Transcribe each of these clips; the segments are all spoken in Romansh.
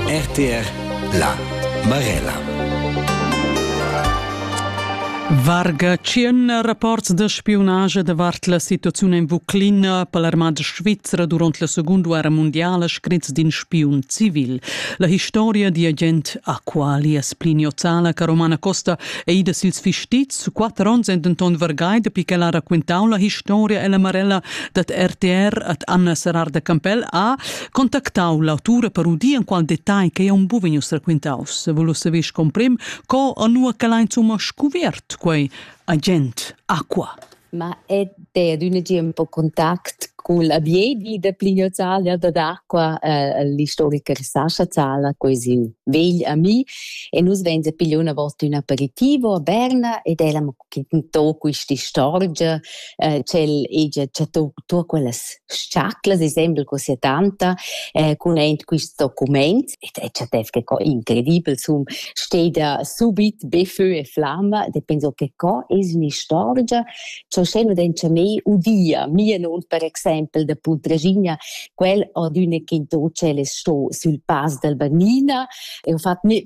RTR La Marella Varga tschien rapports da spiunage davart la situaziun en Vuclina per l'armada svizra durant la Seconda Guerra Mondiala scritts d'in spiun civil. La historia di agent Aqualias Pliniozala che Romana Costa è ida sils fistits, quatter onns è denton vargai dapi che la racquintau la historia e la Marella dad RTR ad Anna Serrar de Campell ha contactau l'autura per udir en qual detagl che un buvenius raquintaus. Volus saver comprim co anua che l'ha insomma scuvert quei agent Aqua. Ma è ed un gi un po contact col abiedi de Plinio Zalia da d'acqua, eh, l'istoriker Sascha Zala, così vegl ami, e nus venze pigliò una volta un aperitivo a Berna ed ella mi chi tò quist'istorgia, eh ch'el hegia chattà tuot quellas s-chaclas insembel co sia tanta eh cun aint quist documaint ed el chattess che co incredibel sun steda subit be fö e flamma, e penso che co es ün'istorgia cha usché nu den cha mei udia, mia non per exaimpel da Puntraschigna, quel ad üna ch'in to tschel es sto sül Pass dal Bannina, e ho fat mê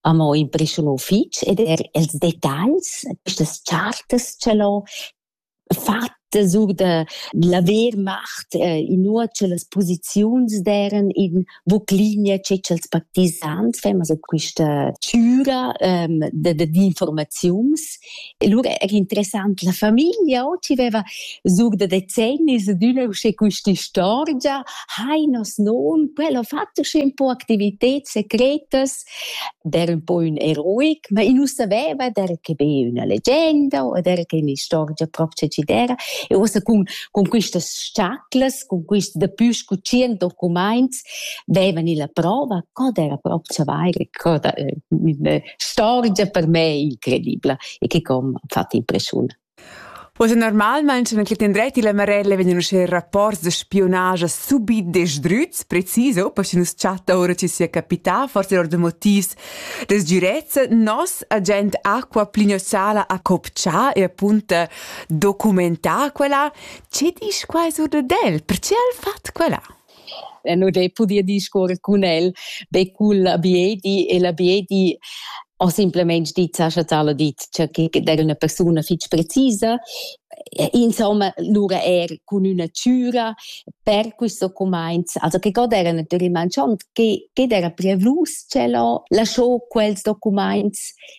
amo impreschuno fich ed eir ils detagls, quistas chartas cha l'ho fatta sur da laver macht, inua cha las posiziuns d'eiran in Vuclinia che cha'ls partisans faivan a quista chüra da d'informaziuns E lura era interessant la famiglia, oh, ti veva zug da decennis adüna usche quist'istorgia, hai nos non, quel ho fatto usche un po' activités secretas, der un po' ün eroic, ma i nu saveva der che be üna legenda o der che un'istorgia propcha ci d'era e uossa cun cun quistas sciaclas, cun quist dapü scu tschient documaints vevan illa prova co d'era propcha vaire, co da Storgia per me incredibla e che com ha fatto impressiun. Poi normalmain sono che tendrei la Marella vengono uscire rapporti di spionaggio subit desdruts, preciso, poi se nos chatta ora ci sia capita, forse or de motivs des girezza, nos agent Acqua Plignossala a copcia e appunto documentà quella, ce dici quai sur de del? Perché ha fatto quella? E nu d'he pudü discuorrer cun el be cul abiedi e l'abiedi ho simplamaing dit, Sascha Zala dit, cha que d'eira üna persuna fich precisa. Insomma, lura eir cun üna chüra per questo cumainz. Also che god eira natüralmaing schon, che, che d'eira preavlus tschel ho lascho quels documaints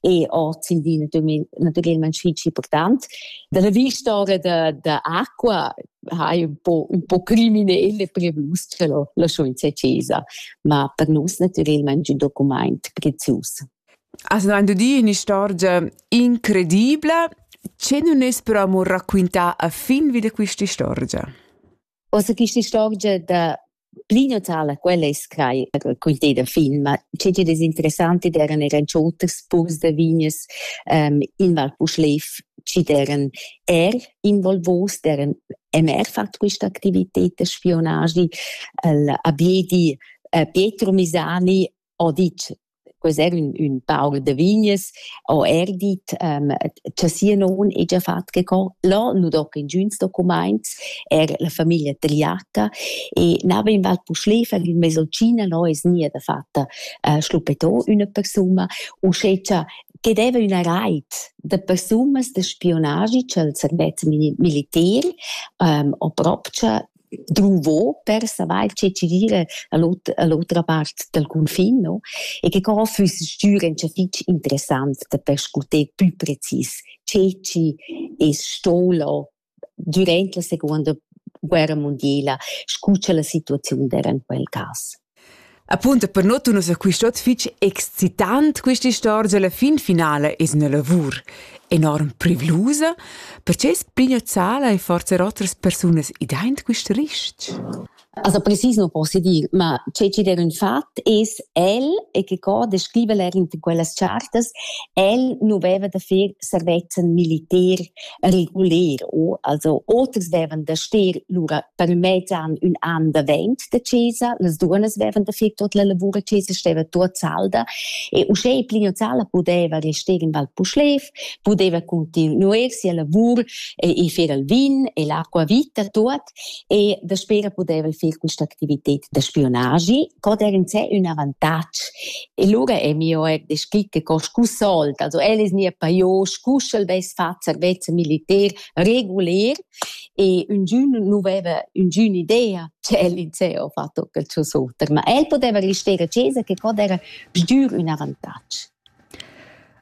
e oz in di naturalmente fitg important. Dalla vista da, da acqua ha un po, un po criminele per nus ce l'ho la scienza accesa, ma per nus naturalmente un document prezios. Also wenn du dir eine Storia incredibile, ce non es però amor racquintà a fin wieder questa storia? Uossa quista istorgia da pli natala, quella es crai quinteda fin, ma che chi'd es interessant id eran eran cho oters purs da vignas in Val Puschlev chi'd eran eir involvuos, d'eran e'm eir fat quista activited da spionagi, il Abiedi Pietro Misani ho dit quels eran ün, ün paur da vignes, ho er dit um, cha sia non hegia fat che co, là nu do ingüns documaints, er la famiglia tagliata e n'havein val pu schlefer in mesolcina là es nia da fatta uh, schluppetò üna persuna, uschè cha che deva üna reit da persunas da spionagi cha'l serveç militer um, ho propcha druvo per savair che ci gira a l'otra part dal cunfin no e che co füss stür incha fich interessant da perscuter pü precis che ci es stoula dürant la secuonda guerra mundiela scu cha la situaziun d'era in quel cas. Appunto per not ussa quist'ot fich excitant quista istorgia, la fin finala es üna lavur enorm privlusa. Perche es Plinio Zala e forse otras persunas ideint quist rist? Also precisiamo posso dire, ma ciò che era un fatto es el e che co descrive er in quelle chartas, el non aveva da fare servezzan militär reguler u also oters deven da stir lura per mezzan ün an davent da chesa las duonas vevan da fir tot la lavura chesa steva tuot salda e uschè plino sala pudeva rester in val Puschlev pudeva continuer sia lavur e, e fer al vin e l'acqua vita tuot e daspera pudeva far questa activitat da spionagi, co der in sé un avantatg. E lura è mio er descrit che co scu sold, also el es nia paiò, scu sch'el vess fat servezza militer reguler e un giun nu veva un giun idea che el in sé ho fatto quel suo soter, ma el poteva restare a chesa che co era sgiur un avantatg.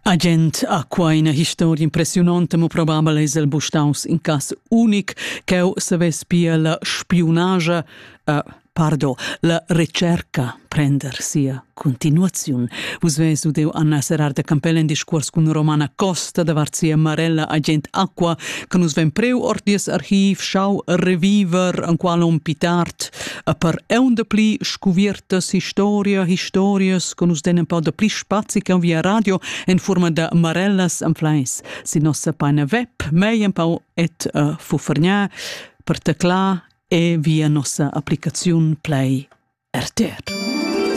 Agent ha quai ina historia impressiunonta, mo probabel es el bu staus in cas unic ch'eu savess pia la spiunagia, uh, pardon, la recerca prender sia continuaziun. Vus ves udeu Anna Serrarda Campell in discuors cun Romana Costa davart sia marella agent Aqua, che nus ven preu ord dies archiv, schau reviver, en qual on pitart, a per eunda pli scuviertas historia historias con us den un po da pli spazi che via radio in forma da marellas am fleis sin nossa paina web mei un po et uh, fufergna per tecla e via nossa applicaziun play RTR.